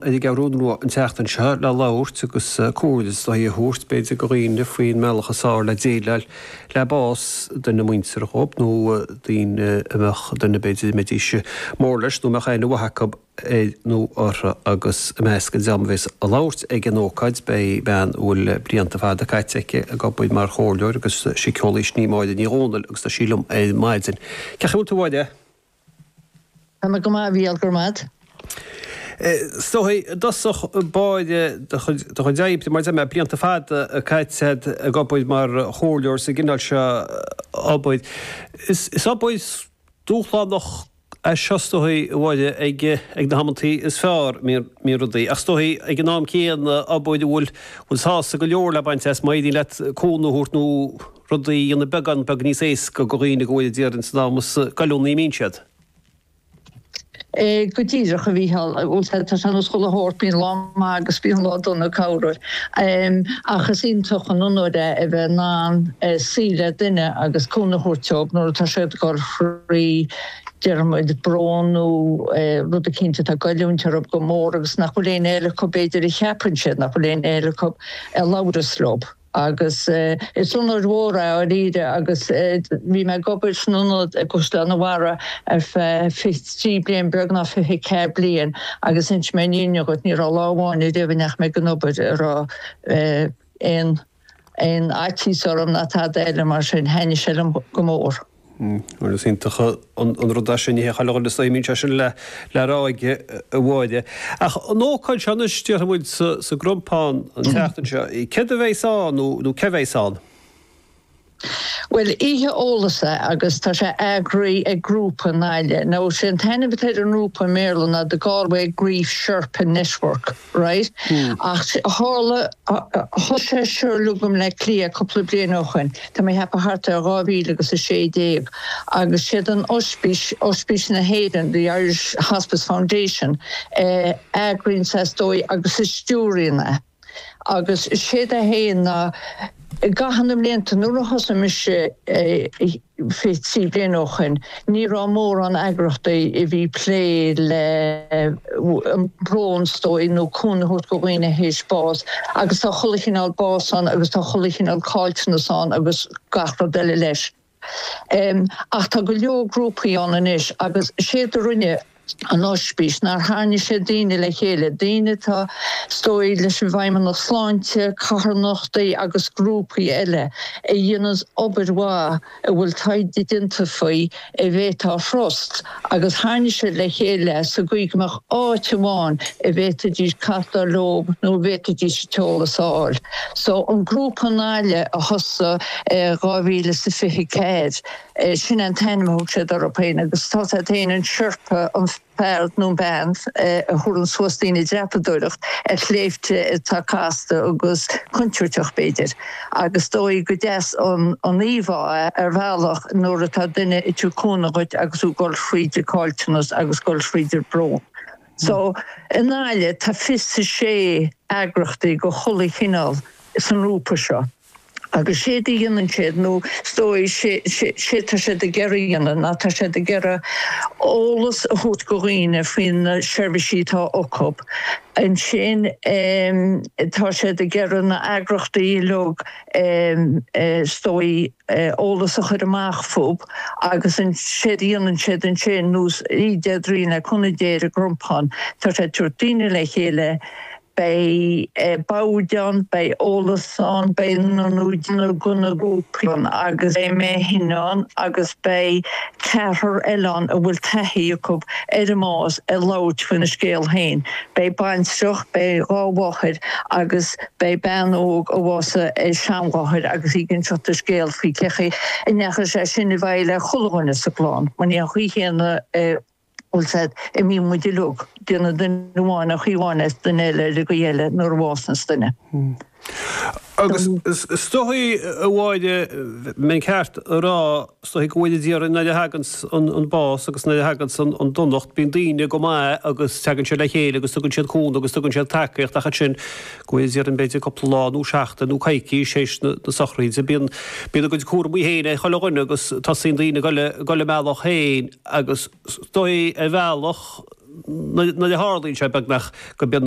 Ar an gCeathrú Rua an tseachtain seo le labhairt agus comhairle is dóichí a thabhairt b'fhéidir do dhaoine faoin mbealach is fearr le déileáil le bás duine muinteartha dhób nó daoine a mbeadh duine b'fhéidir a mbeidís mór leis nó a mbeadh aithne mhaith acu air nó orthu agus i measc an dream a bhéas ag labhairt ag an ócáid beidh bean a bhfuil blianta fada caite aici ag obair mar chomhairleoir agus síceolaí sin í Máire Ní Dhomhnaill agus tá sí liom ar maidin. Cén chaoi a bhfuil tú a Tá mé go maith a Mhícheál go raibh maith agat. Is dóichí i dtosach báire do chuid oibre mar deir mé, blianta fada caite agat ag obair mar chomhairleoir sa gcineál seo obair. Is obair dúshlánach é seo is dóichí a Mháire ag na hamantaí is fearr a mbíonn rudaí, ach is dóichí ag an am céanna obair a bhfuil sásamh go leor le baint as má éiríonn leat cúnamh a thabhairt nó rud a dhéanann beagán beag níos éasca do dhaoine go bhfuil ag iarraidh san am is goilliúnaí a mbíonn siad. Go díreach, a Mhícheál. Bhuel, tá sé ar nós chuile obair, bíonn lá maith agus bíonn lá dona corruair. Ach is iontach an onóir é a bheith in ann suí le duine agus cúnamh a thabhairt dóibh nuair atá siad ag goil thrí, deir muid, brón nó rud eicínt atá ag goilliúint orthu go mór agus nach bhfuil éinne acu b'fhéidir a cheapann siad nach bhfuil éinne acu a labhrós leo. agus is onóir mhór é dáiríre agus bhí mé ag obair san ionad i gCaisleán an Bharraigh ar feadh fiche trí bliain beagnach fiche ceathair bliain agus insim aon ní agat ní raibh lá amháin ariamh a ndeachaigh mé ag obair a raibh aon aon fhaitíos orm ná tada eile mar sin thaitnigh sé liom go mór. Bhuel, is iontach an rud é sin, Mícheál, agus is aoibhinn sé sin le rá aige, a Mháire. Ach an ócáid seo anois, déarfaidh muid, sa gCrompán an tseachtain seo, céard a bheas ann nó cé a bheas ann? Bhuel, Oíche Eolais é agus tá sé eagraithe ag grúpa i nGaillimh. Now, is é an t-ainm atá ar an ngrúpa i mBéarla ná The Galway Grief Sherpa Network. right ach tharla thosaigh sé is dóigh liom i mBleá Cliath cúpla bliain ó shin tá mé ag ceapadh thart ar dhá mhíle agus a sé déag agus siad an ospís ospís na hÉireann the Irish Hospice Foundation a eagraíonn é is dóigh agus a stiúraíonn é agus séard é féin ná i gcaitheamh na mblianta nuair a thosaigh mise i fiche trí bliain ó shin, ní raibh mórán eagrachtaí a bhí ag plé le brón 's dóigh nó cúnamh a thabhairt go dhaoine tar éis bás agus tá chuile chineál bás ann agus tá chuile chineál caillteanas ann agus gach rud eile leis. Ach tá go leor grúpaí ann anois agus séard a rinne an Oispís, ná tharraing siad daoine le chéile, daoine atá, is dóigh, leis an bhFeidhmeannacht Sláinte, carthanachtaí agus grúpaí eile a dhéanann obair mhaith a bhfuil taighde déanta faoi a bhféadfá a thrust agus tharraing siad le chéile sa gcaoi go mbeadh áit amháin a bhféadfaidís castáil leo nó a bhféadfaidís an t-eolas a fháil. So an grúpa Gaillimhe a thosaigh i dhá mhíle is a fiche ceathair, Sin é an t-ainm a thug siad orthu féin agus tá siad féin, an Sherpa, an fear nó an bean a thugann suas daoine ag dreapadóireacht ar shléibhte atá casta agus contúirteach b'fhéidir agus is dóigh gur deas an íomhá é ar bhealach nuair atá duine ag tabhairt cúnamh dhuit agus tú ag dul thríd an gcaillteanas agus ag dul thríd an mbrón. So i nGaillimh tá 26 eagrachtaí de chuile chineál sa ngrúpa seo. Agus séard a dhéanann siad, ná is dóigh, sé tá siad ag iarraidh a dhéanamh ná tá siad ag iarraidh eolas a thabhairt do dhaoine faoi na seirbhísí atá acu. Ansin tá siad ag iarraidh na heagrachtaí uilig is dóigh eolas a chur amach fúb agus séard a dhéanann siad ansin, ar nós Déardaoin seo chugainn sa gCrompán, tá siad ag tabhairt daoine le chéile Beidh boird ann, beidh eolas ann, beidh neart tae agus cupáin agus beidh mé fhéin ann agus beidh ceathrar eile ann a bhfuil taithí acu ar an mbás ag labhairt faoina scéal féin. Beidh baintreach, beidh dhá mháthair agus beidh bean óg a bhásaigh a seanmháthair agus í ag inseacht a scéil faoi cé chaoi a ndeachaigh sé sin i bhfeidhm ar chuile dhuine sa gclann. Mar ní ar an gcaoi chéanna a dhéileálann muid uilig. Déileálann duine amháin ar chaoi amháin is duine eile ar an gcaoi eile nuair a bhásaíonns duine. Agus is dóigh, a Mháire, mbeinn ceart a rá, is dóigh go bhfaigheann na hÉireannaigh nuair a thaganns an bás agus nuair a thaganns an donacht, bíonn daoine go maith agus teagann siad le chéile agus tugann siad cúnamh agus tugann siad tacaíocht ach ansin go bhfaigheann na hÉireannaigh b'fhéidir cúpla lá nó seachtain nó coicís tar éis na sochraíde, bíonn a gcuid cúramaí féin ag chuile dhuine agus tosaíonn daoine ag dul a mbealach féin. agus is dóigh ar bhealach nuair a tharlaíonn sé beagnach go mbíonn